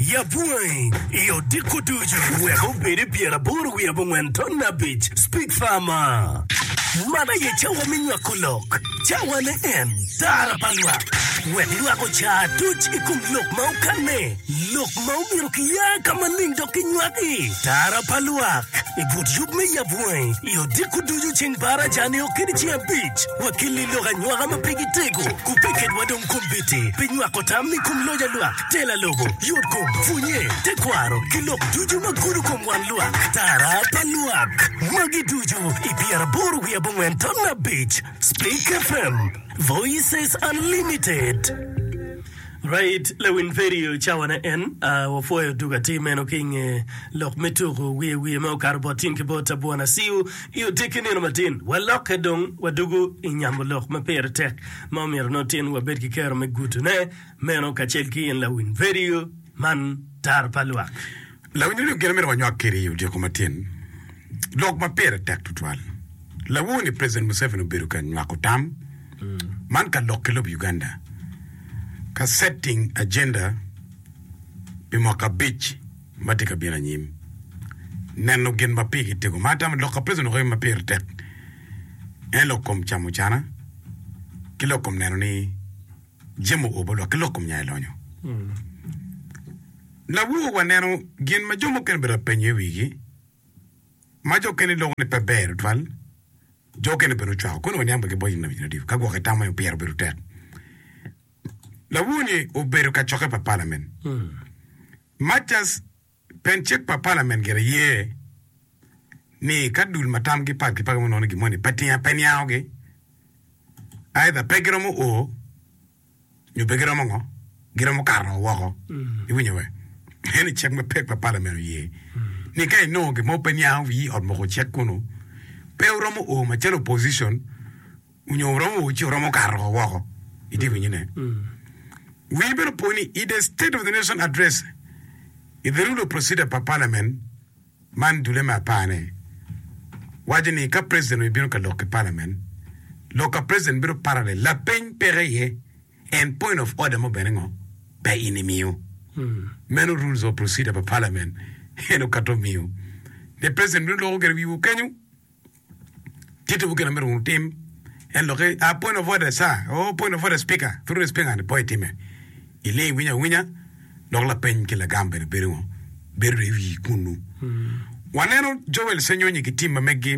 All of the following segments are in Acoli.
Yabwangi i odiko ducu wek obed i pyeraboro wiye abongwen ton abic. Speak Farmer. Man aye cawa me nywako lok, cawa ne en tara pa lwak, wek lwak ocar duc i kom lok ma okanne, lok ma omyero kiya ka maling dok kinywaki. Tara pa lwak i but yub me yabwangi i odiko ducu ceng par aca-ni o kede ceng abic. Wakilli lok anywaka ma pe gitego, ku pe kedwa dong kombiti pi nywako tam i kom loc a lwak. Tela lobo, yotkom, pwonye, tekwaro, ki lok ducu ma gudo kom wan lwak, tara pa lwak. Magi ducu i pyeraboro wiye abongwen ton abic. Speak FM, Voices Unlimited. Right, lawin Perry ocawa ne en. Uh, wapwoyo duk atir meno ki nge lok me tuku wiye wiye me okato bot tin ki bot abwana siu i otekki nino matin. Walokke dong wadugu i nyamo lok ma pire tek ma omyero nongo tin wabed ki kero me gutune. Meno kacel ki in lawiny redio man Tar pa Lwak. Lawiny redio gin amyero wanywak kede i otyeko matin lok ma pire tek twatwal. Lawoo ni president Museveni obedo ka nywako tam man ka lok ki lobo Uganda ka setting agenda pi mwaka abic ma tye ka bino anyim. Neno gin ma pigi tego ma atamo lok ka president okeyo ma pire tek en lok kom camo cana ki lok kom neno ni Jemo o balok ki lok kom nya i lonyo labwor wa neno gin ma jo mukene bedo ka penyo i wigi ma jo okene loko ni pe ber tutwal jo okene bene ocwako koni waniang bene ki bwonyo nabi nyo odiko ka gwok itamo aye opyero bedo tek labwor ni obedo ka coke pa palamen Mathias Pien cik pa palament gire ye ni ka dul ma tamgi pat gipaki ma nongo gin moni pe tinga pe niangogi, aidha pe giromo o nyo pe giromo ngo, giromo kato ngo woko. Iwinyo we? Eni cik ma cik pa palament oye ni ka inongo gin mo pe niango wi ot moko cik kunu, pe wuromo o macalo opposition, onyo oromo ci oromo kato ko woko itye winyo ne wii bene opo ni i the state of the nation address i the rule of procedure pa parliament man dule me apar ne waco ni ka president oye bino ka lok ki parliament lok ka president bedo parallel lapeny peke iye and point of order mo bene ngo pe in imiyo meno rules of procedure pa parliament en okato miyo ne president bino loko gire wiwu kenyo Tittiwu gin ma myero wutim. En lokke, a point of order sir, oh point of order speaker, through the speaker ni po itime. Iling iwinyo awinya, dok lapeny ki lagam bene bedo ngo? Bedo i wi kunnu. Waneno Joel Senyonyi ki tim ma meggi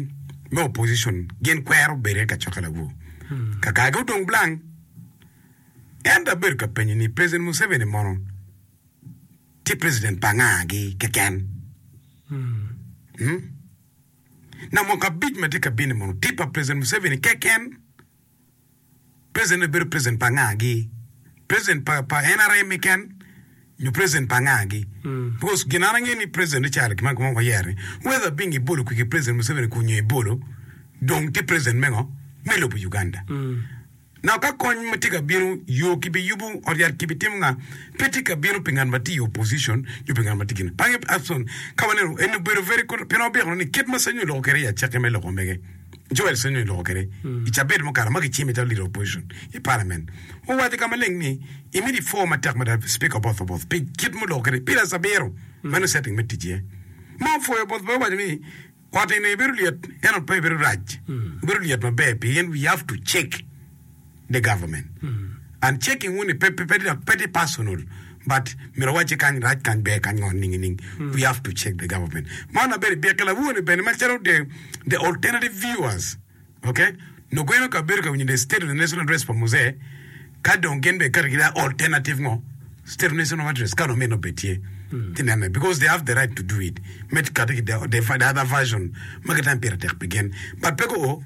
me opposition gin kwero bedo i kacokke labwur. Kakagi odong blank. Ento abedo ka penyo ni President Museveni mono tye President pa nga gi keken? Hmm? na mwaka abic ma tye ka bino-ni mono tye pa President Museveni keken? President-ni bedo president pa nga-gi? President pa pa NRM keken nyo president pa nga-gi? Because gin an angeyo ni president Richard Kimani Guma woko yero ni whether Bing ibolo kwigi president Museveni kun nyo ibolo dong tye president mengo me lobo Uganda. Naka ka kony ma tye ka bino yo ki bi yubu ot yat ki bi timo nga pe tye ka bino pi ngat ma tye i opposition nyo pi ngat ma tye kine bange Abson ka waneno en obedo very good pien wabyeko ni kit ma Sanyu oloko kede i acake me loko mege Joel Sanyu oloko kede i cabet mukato ma ki cime calo leader opposition i parliament owaco ka maleng ni i miti four ma tek mada speaker Oboth Oboth pi kit ma oloko kede Peters Abiro meno setting me tic iye ma opwoyo Oboth bene owaco ni Koti ni bedo lyet ento pe bedo rac bedo lyet maber pien we have to check the government and checking wuni pe pe pe tye personal but myero awacce kany rac kany ber kany ngo nining nining we have to check the government man na bene byek ki lawoni bene macalo the the alternative viewers Ok nongo en okabedo ka winyo the state of the nation address pa Muse ka dong gin be kati gida alternative ngo state of nation of address ka dong meno be tye ti nene because they have the right to do it me kati ki the other version ma gitamo pire tek pi gin but pe go o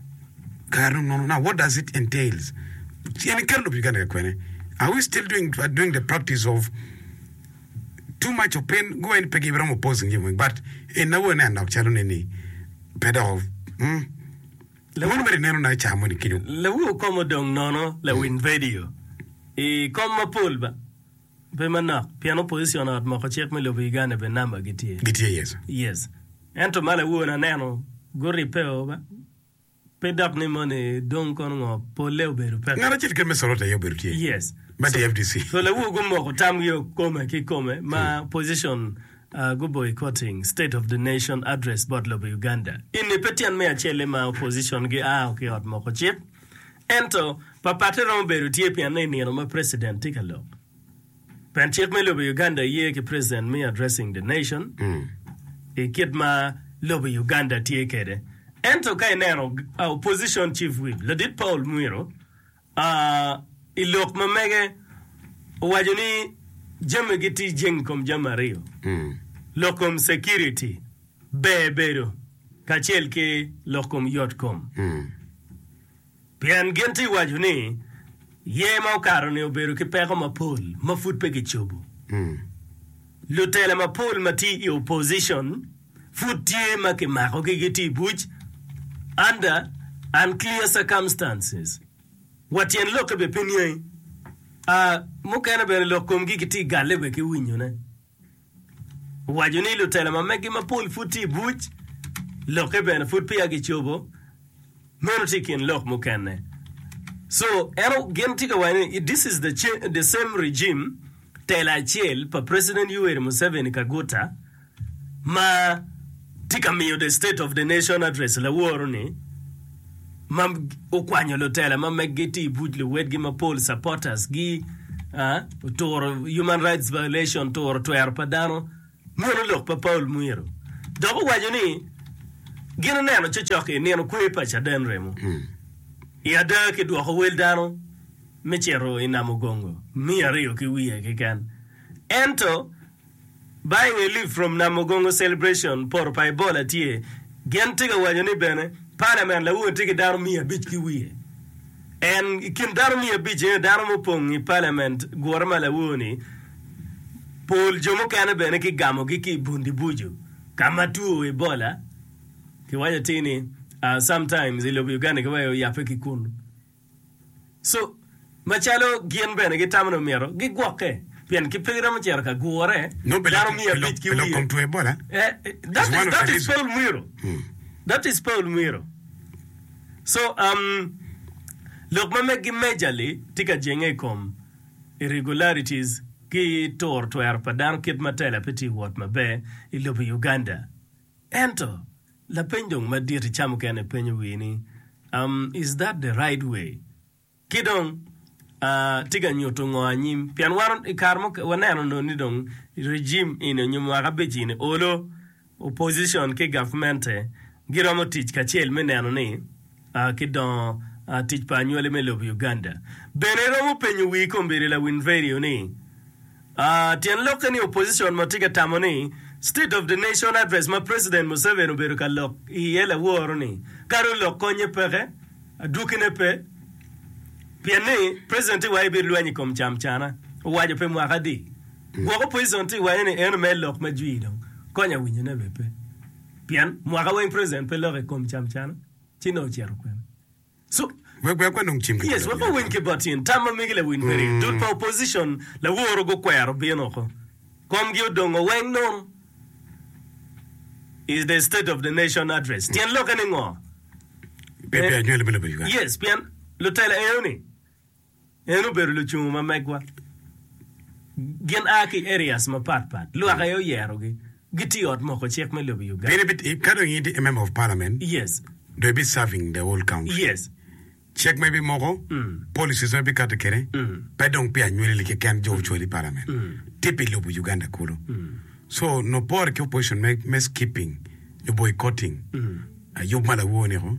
kare dong nono now what does it entails ci en iketo lobo Uganda ka kwene are we still doing, doing the practice of too much of pain go en pe giromo pause nge weng but en awo ne anok calo ne ni pe dok umm Lawin mere ineno na ica moni kenyo. Lawi okom odong nono lawin vedio i kom mapol ba pe manok pien opposition ot moko cik me lobo Uganda be number gi tye. Gitye yes. Yes. Ento ma lawi one aneno guripeo ba. Pe dok ni moni dong kono ngo, polle obedo peke. Ngat acel keken me Sorot aye obedo tye. Yes. Ma So, DFDC. so lawogo gumoko tamgi o kome ki kome ma position ah, gu boycotting state of the nation address bot lobo Uganda. Eni pe tyen me acele ma opposition gi ao ki ot moko cik. Ento, papatte romo bedo tye pienno i nino ma president tye ka lok. Pien cik me lobo Uganda ye ki president me addressing the nation i kit ma lobo Uganda tye kede. Ento ka ineno opposition chief whip ladit Paul Mwiro i lok ma mege owaco ni jami gi ti jing kom jami ariyo lok kom security ber bedo kacel ki lok kom yot kom. Pien gin tye waco ni, Yer ma okato-ni obedo ki peko mapol ma pud pe kicobo. Lutela mapol ma tye i opposition pud tye ma kimakogi gitye i buc under unclear circumstances. Wa tyen lokke bene pe niangi, a mukene bene lok komgi kitye galle wa ki winyone. Owaco ni lutela ma megi mapol pud tye i buc, lokke bene pud peya gicobo, meno tye i kin lok mukene. So, en gin tye ka waco ni this is the, the same regime, tela acel pa President Yoweri Museveni Kaguta ma tye ka miyo The State of the Nation Address laworo-ni ma okwanyo lutela ma meggi tye i buc luwotgi mapol, supporters, gi oturo human rights violation, turo twero pa dano, meno lok pa Paul Mwiro. Dok owaco ni gin oneno cocok i nino kwer pa caden remo i ada ki dwoko wel dano me cito i Namugongo miya aryo ki wiye keken. Ento. Buying a leaf from Namugongo celebration poto pa Ebola tye, gin tye ka waco ni bene parliament lawunge tye ki dano miya abic ki wiye. En i kin dano miya abic eni dano mupong i parliament gure ma lawor ni pol jo mukene bene ki gamo gi ki bundi buju ka ma two Ebola ki waco atir ni sometimes i lobo Uganda ki waco yape ki kunu. So, macalo gin bene gitamo ni omyero gigwokke pien ki pe giromo cito ka gure, dano miya abic ki wiye. That is Paul Mwiro. That is Paul Mwiro. So, um, lok ma megi majorly tye ka jenge i kom irregularities ki turo twero pa dano kit ma tela pe tye wot maber i lobo Uganda. Ento, lapeny dong madit i ca mukene penyo wii ni, Um, is that the right way? Ki dong, Uh, tye ka nyuto ngo anyim? Pien wan i kare mo waneno nongo ni dong regime eni onyo mwaka abic eni olo opposition ki gavmente giromo tic kacel me neno ni Uh, ki dongo Uh, tic pa anywali me lobo Uganda. Bene iromo penyo wii kombeddi Lawin Radio ni, Tyen lokke ni opposition ma tye ka tamo ni State of the Nation Address ma President Museveni obedo ka lok iye laworo ni kadi olok konye peke, adwokine pe pien ni President tye waco ibit lweny ikom cam cana owaco pi mwaka adi gwok opposition tye waco ni eno mere lok ma jwi dong konya winyo ne bene pe pien mwaka weng President pe lok ikom cam cana ci nongo ocito kwene. Yes, wek wawiny ki bot in. Tam ma megi lawiny pe rii. Dul pa opposition laworo gukwero bino oko. Komgi odongo weng nono. Is the state of the nation address. Tyen lokke ni ngo? Yes, pien lutela eo ni. En obedo lucungu ma megwa. Gin a ki areas mapat pat. Lwak aye oyerogi. Gitye i ot moko cik me lobo Uganda. Gin ibi, ka dong in itye a member of parliament, Yes. dong ibi serving the whole country. Yes. Cik ma ibi moko, policies ma ibi kati kede, pe dong pi anyweleli keken jo ocwali i parliament. Tye pi lobo Uganda kulu. So, nongo pore ki opposition me, me skipping nyo boycotting yub ma lawoo-ni-ko.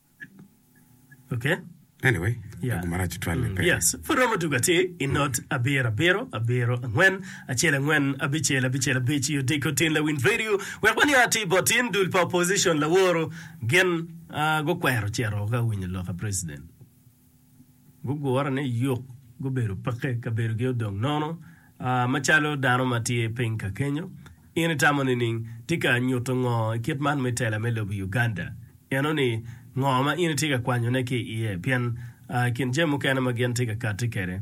Okay? Anyway, yeah. agu marac twal mm. pe. Yes. Pud romo tugo ati i mm. not abiro abiro abiro angwen acel angwen abicel abicel abic i odiko tin lawin radio wek wani ati botin dul pa opposition laworo gin uh, gukwero cero ka winyo loka president. Gugure ni yuk gubedo peke, kabedogi odong nono. Macalo dano ma tye piny ka kenyo, in itamo nining? Tika nyuto ngo i kit man me tela me lobo Uganda? Eno-ni, ngo ma in itye ka kwanyone ki iye? Pien i kin jami mukene ma gin tye ka kati kwede,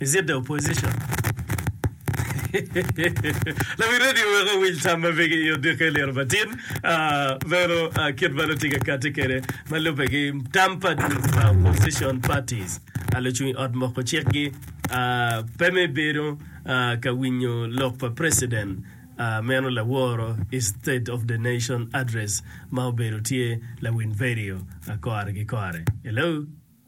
Is it the opposition? Lawi radio wek owiny tam ma bege i odiko i liro matin. Meno kit ma nongo tye ka kati kede ma lube ki tam pa opposition parties. Lucung i ot moko cik gi pe me bedo ka winyo lok pa president meno laworo i state of the nation address ma obedo tye lawiny radio kore ki kore. Hello.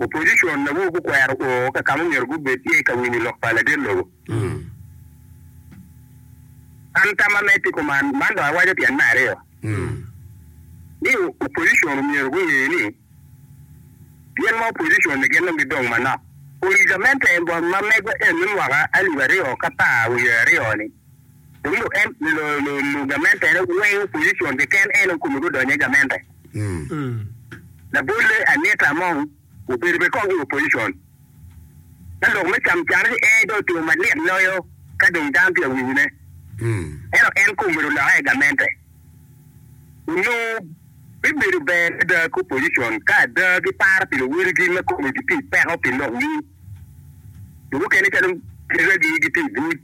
Opposition awobi gukwero o ka kama omyero gubed tye ka winyo lok pa ladet lobo. An tam amed ki kuman, man dong awaco tyen me aryo ni opposition omyero gunge ni gin ma opposition ni gin dong gidong manok. Ori gamente ma megwa eni mwaka alip aryo ka par wiye aryo ni. Wiro en lu gamentere weng opposition keken en okome gudonyo igamente labolle Anita Among obedo bene kong i opposition ka lok me cam can ki ee dong otiyo malit loyo ka dong dano tye awinyo ne ento en kong obedo loka igamente onongo bibedo ber ada ki opposition ka ada ki paro pi luwil gi me kome giti peko pi lok winy jo mukene calo Kira gi giti ibuc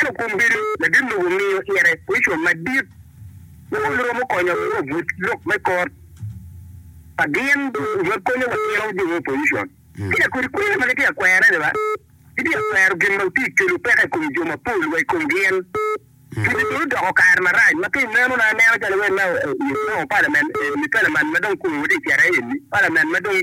Ento kom bedo ladit lobo miyo tyene Kricwa madit ma ol romo konyo wa wabut lok me kor pa gin ma konyo watino jo me opojicon. Ki dok kodi kwena ma gitye ka kwere ni ba gitye ka kwero gin ma tye ka kelo peko i kom jo mapol wa i kom gin. Pwodde dong odoko kare marac ma ka ineno na anena calo iwinyo ni Obama palament ma dong kome watye ka cito iye eni palament ma dong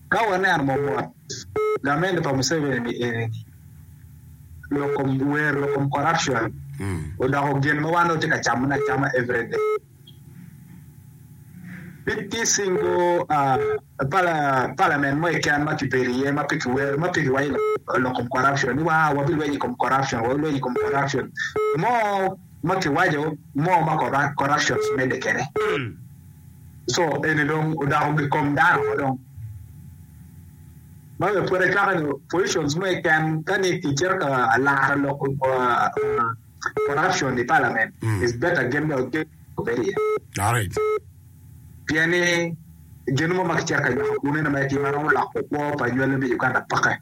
Ka waneno momot gamente pa Museveni ni enini, lok kom wer, lok kom corruption odoko gin ma wan dong watye ka camone acama every day. Pe tye singo Parliament mo keken ma kibedo iye ma pe kiwero, ma pe kiwaco lok kom corruption ni waa wabilwenyo i kom corruption, wabilwenyo i kom corruption mo. ma kiwaco mo ma corruptions medde kede so eni dong odoko gi kom dano ma dong ma pwod acwaka ni positions mo iken ka ni ki cito ka laro lok corruption i parliament is better gin dong gin obedi iye Alright. pien ni gin mo ma kicito ka nywako kunu ene ma etye ma romo loko kwo pa nywale me Uganda peke.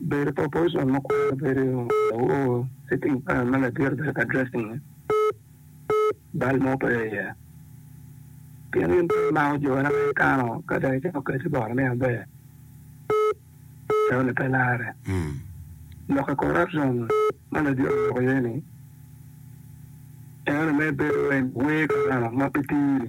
Bedo proportion ma kwero bedo lawoo, sitting plan ma ladit obedo ka addressing-nge, bal mo pe iye. Pien in pe imako jone ma ikano ka dong icako keti bot me aber, joni pe larre. Lok i corruption ma ladit oloko iye-ni, eno me bedo en wee karama ma pe tiri.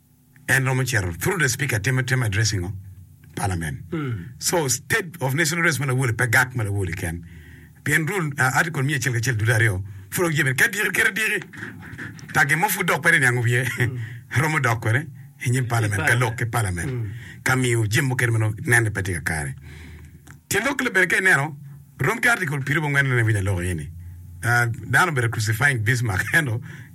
en romo cito through the speaker timo timo address ingo parliament so state of national race ma lawole pe gak ma lawole ken pien rule uh, article miya acel kacel dude aryo pud ok jebe ka diki kere diki tagi mo pud dok pere niango wiye romo dok kwene inyim parliament ka lok ki parliament ka miyo jim mukene mano nene pe tye ka kare tye lok le bene ka ineno rom ki article pirubongwen ne winya lok ini Ah, dano bene crucifying Bismarck ento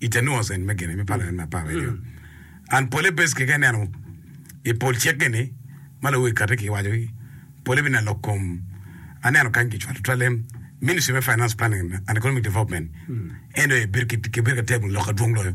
I te nongo sen me gine me pala me apar aryo, an pole bes keken ineno i pol cik-ki ni, ma luwil kati ki wacogi, pole bino lok kom. Aneno kany ki cwalo twalem, Ministry me Finance Planning and Economic Development, NOA, bedo ki bedo ka table lok adwong loyo.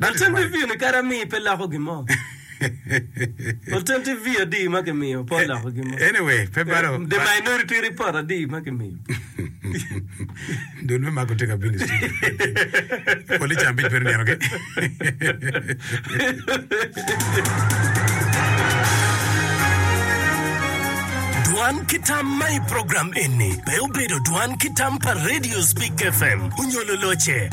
Alternative view ni kadi amii pe loko gin mo. Alternative view adi ma ki miyo pe oloko gin mo. Anyway, pe balo. The minority report adi ma ki miyo. Dul me mako tye ka bino i studio. Police ambic bedo nino ki. Dwan ki tam ma i program eni pe obedo dwan ki tam pa Radio Speak FM onyo loloce.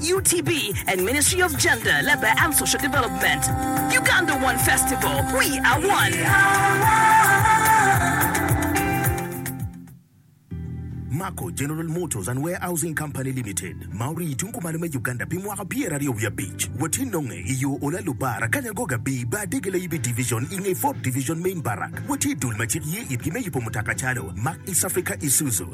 UTB and Ministry of Gender, Labour and Social Development. Uganda One Festival, We Are One! Mako General Motors and Warehousing Company Limited, ma orii i tung kumalo me Uganda pi mwaka pyeraryo wiye abic, watye nonge i yo Ola Lubara, Kanyangoga Bii, Bar Dege Layibi Division i nge Ford Division Main Barrack. Watye i dul ma cik ye itgi me yubo mutoka calo, Mark East Africa Isuzu,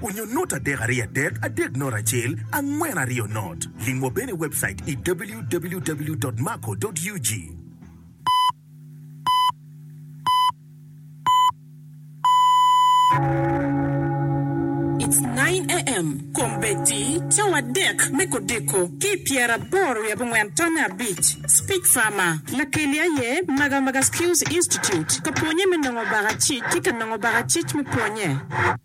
Onyo not adek ariyo adek adek not acel angwen ariyo not. Lim wa bene i webcait i www.maco.ug. It's nine AM Kombeddi cawa adek me kodeko ki i pyeraboro wiye abongwen tonne abic Speech Farmer Lakeli aye Magamaga Skills Institute ka pwonye me nongo baka cic ki ka nongo baka cic me pwonye.